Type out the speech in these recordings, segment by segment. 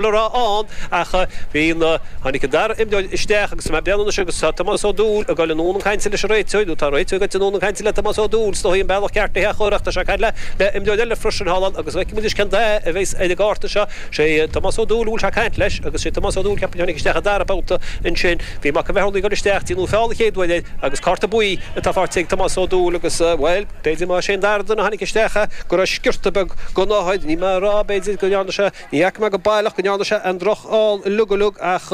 le rá ann ach bhí na. Tháinig an dara imreoir isteach agus tá bliain anois agus tá Tomás Ó Dúill ag dul anonn ag caint leis an réiteoir nó tá an réiteoir ag dul anonn ag caint le Tomás Ó Dúill sin í an bealach ceart isteach óir tá sé ag caint le le imreoir eile freisin thall ann agus feicimis cén dath a bheidh ar an gcárta seo sé Tomás Ó Dúill a bhfuil sé ag caint leis agus sé Tomás Ó Dúill ceapaim a tháinig isteach an dara babhta ansin bhí Mac an Bheatha ag dul isteach déanadh feall a chéad uair air agus cárta buí atá faighte ag Tomás Ó Dúill agus bhuel b'fhéidir mar sé an dara duine a tháinig isteach go raibh sciorta beag gonáthair ní mé a rá b'fhéidir go ndearna sé Ní fhaca mé go baileach go ndearna sé aon drochfheall uilig uilig ach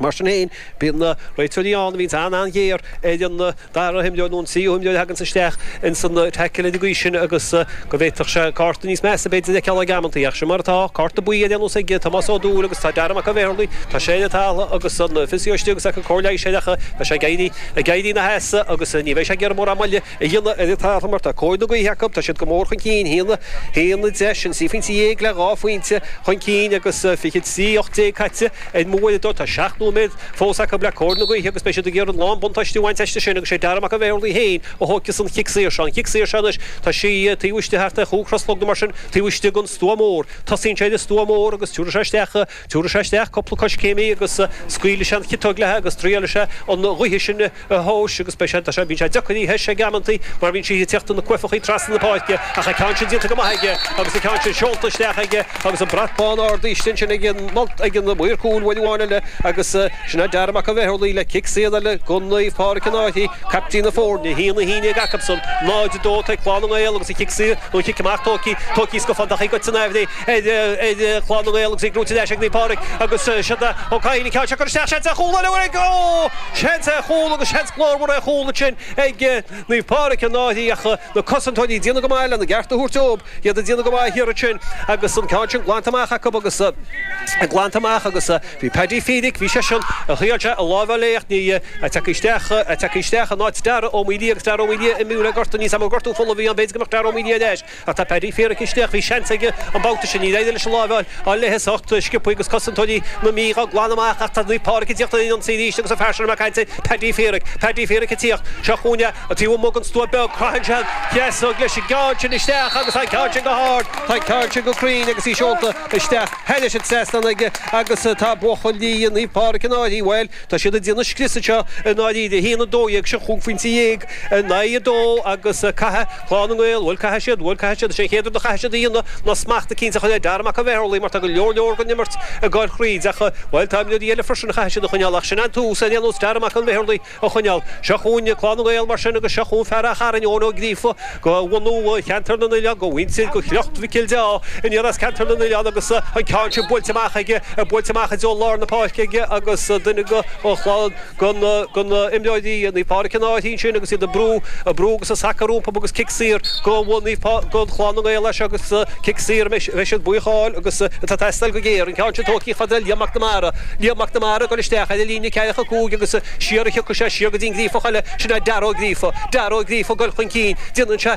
mar sin féin, bíonn na réiteoirí ann a bhíonns an-an-ghéar ar an dara himreoir nó an tríú himreoir a thaganns isteach ins an taicil ar an gcaoi sin agus go bhféadfadh sé cárta níos measa b'fhéidir a fheiceáil ag amantaí. Ach sin mar atá. Cárta buí ar aon nós ag Tomás Ó Dúill agus tá Dara Mac Giolla Bhéarlaí, tá sé ar an talamh agus an physio istigh agus é ag cur cóir leighis air ach tá sé ag éirí ina sheasamh agus ní bheidh sé ag iarraidh mórán moille. A dhéanamh ar an talamh mar tá cóir na gaoithe acu, tá siad go mór chun cinn, a haon, a deich, sin trí phointe dhéag le dhá phointe chun cinn agus fiche is ocht déag caite ar m'uaireadóir. Tá seacht nóiméad fós acu le cóir na gaoithe agus beidh siad ag iarraidh lán-buntáiste a bhaint aisti sin agus sé Darragh Mac an Bhéarlaigh fhéin a thóigfeas an chic saor seo. An chic saor seo anois, tá sí taobh istigh thart ar chúig slata nó mar sin, taobh istigh den stua mór. Tosaíonn sé ag an stua mór agus tiúrfaidh sé isteach. Tabharfaidh sé isteach cúpla coiscéim agus scaoilfidh sé an chiotóg léithe agus traíálfaidh sé an ghaoth sin a thomhas agus beidh sé tar sé bíonn sé deacair í a thomhas ag amantaí mar bíonn sí ag teacht ina cuaifeachaí trasna na páirce ach an ceann sin déanta go maith aige agus an ceann sin seolta isteach aige agus an brat bán ardaithe ansin ag an malt ag an mhaor cúil babhta amháin eile agus sin é Darragh Mac An Bheithir Laoi le cic saor eile go Naomh Pádhraic an Fhaiche, caiptín na foirne, a haon a haon déag acubsan, 0-2 tá ag Clann na nGael agus an cic saor nó an cic amach tógfaidh tógfaidh scafandach í go Tinneaibh Léith. Clann na nGael agus í brúite ar ais ag Naomh Pádraig agus siad a Ó Cadhain an ceann seo a chur isteach. Seans ar chúl eile acu. Ó! Seans ar chúl agus seans glórmhar ar chúl ansin ag Naomh Pádraig i ndáiríre ach na cosantóirí ag déanamh go maith lena gceart a thabhairt dóibh. Iad ag déanamh go maith thiar ansin agus an ceann sin glanta amach acu agus glanta amach agus bhí Paddy Fíric, bhí seisean, thriail sé a láimh a fháil léi ach ní, tagtha isteach, tagtha isteach in áit Dara Ó Maoilío agus Dara Ó Maoilío imithe le gortú, níl a fhios agam an gortú fola a bhí ann, b'fhéidir go mbeadh Dara Ó Maoilío ar ais. Ach tá Paddy Fíric istigh, bhí seans aige an babhta sin, níor éirigh leis an láimh a fháil léithe isteach sciobtha agus cosantóirí na Mí á glanadh amach ach tá Naomh Pádraig ag tíocht ar an ionsaí arís agus an fear sin a chaintigh muid air Paddy Fíric, Paddy Fíric ag tíocht, seo chúinne taobh amuigh den stua beag, caitheann sé an chiotóg leis an gceann sin isteach agus tá an ceann sin go hard, tá an ceann sin go cruinn agus í seolta isteach, thar an trasnán aige agus tá buachaillí Naomh Pádraig i ndáiríre, bhuel, tá siad ag déanamh scrios anseo i ndáiríre, 1-12, sin cúig phointe dhéag in aghaidh a dó agus caithfidh. Clann na nGael, bhuel, caithfidh siad, bhuel, caithfidh siad, is é an chéad rud a chaithfidh siad a dhéanamh ná smacht eicínt a chur ar Dara Mac An Bheotharlaigh mar tá go leor leor den imirt ag gabháil thríd acu. Bhuel, tá imreoirí eile freisin a chaithfidh siad a choinneáil ach sin an tús, ar aon nós, Dara Mac An Bheotharlaigh a choinneáil. Seo chugainn Clann na nGael mar sin agus seo chugainn fear Ráth Chairn, Eoin Ó Gríofa, de bhunadh Cheantar na nOileán, de mhuintir, de shliocht Mhicil de Ádha aniar as Ceantar na nOileán agus an ceann sin bainte amach aige, bainte amach i dtreo lár na páirce aige agus duine de Chlann de na himreoirí Naomh Pádraig ina n-áit ansin agus iad ag brú, ag brú agus ag sacadh rompu agus cic saor go bhfuair Naomh Pá, go bhfuair Clann na nGael as seo agus cic saor a mbeidh siad buíoch a fháil agus atá ag teastáil go géar. An ceann sin tógtha fada ag Liam Mac Namara. Liam Mac Namara ag dul isteach ar an líne ceathracha cúig agus siar a thiocfaidh sé, siar go dtí an Gríofach eile, sin é Darragh Ó Gríofa. Darragh Ó Gríofa ag dul chun cinn, déanann sé,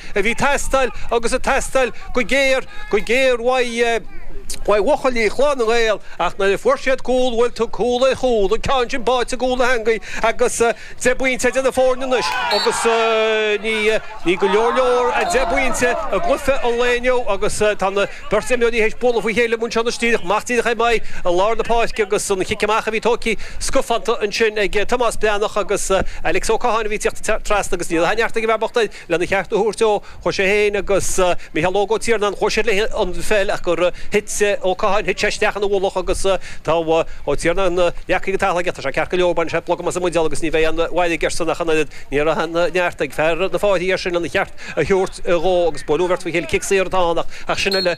a bhí ag teastáil agus ag teastáil go géar go géar uaidh uaidh bhuachaillí Chlann na nGael ach nuair a fuair siad cúl bhuel togha cúl é chúl an ceann sin báite i gcúl na heangaí agus deich bpointe idir na foirne anois agus ní ní go leor leor deich bpointe i gcluiche an lae inniu agus tá na beirt imreoirí théis bualadh faoi chéile amuigh anseo díreach amach díreach ag maith i lár na páirce agus an cic amach a bhí tógtha scafánta ansin ag Tomás Breathnach agus Alex Ó Catháin a bhí ag tíocht trasna agus níl aon neart ag an bhfear bocht Lena cheart a thabhairt dó, chuaigh sé féin agus Mícheál Óg Ó Tiarnáin chuaigh siad le haghaidh an pheil ach gur thit Ó Catháin, thit sé isteach ina mhullach agus tá Ó Tiarnáin leagtha go talamh aige. Tá sé ceart go leor, baineann sé blogam as an mbuidéal agus ní bheidh aon mhairg airsean ach an oiread. Ní raibh aon neart ag fear na Fairche air sin lena cheart a thabhairt dhó agus buaileadh an bheirt faoi chéile, cic saor atá ann ach sin uile.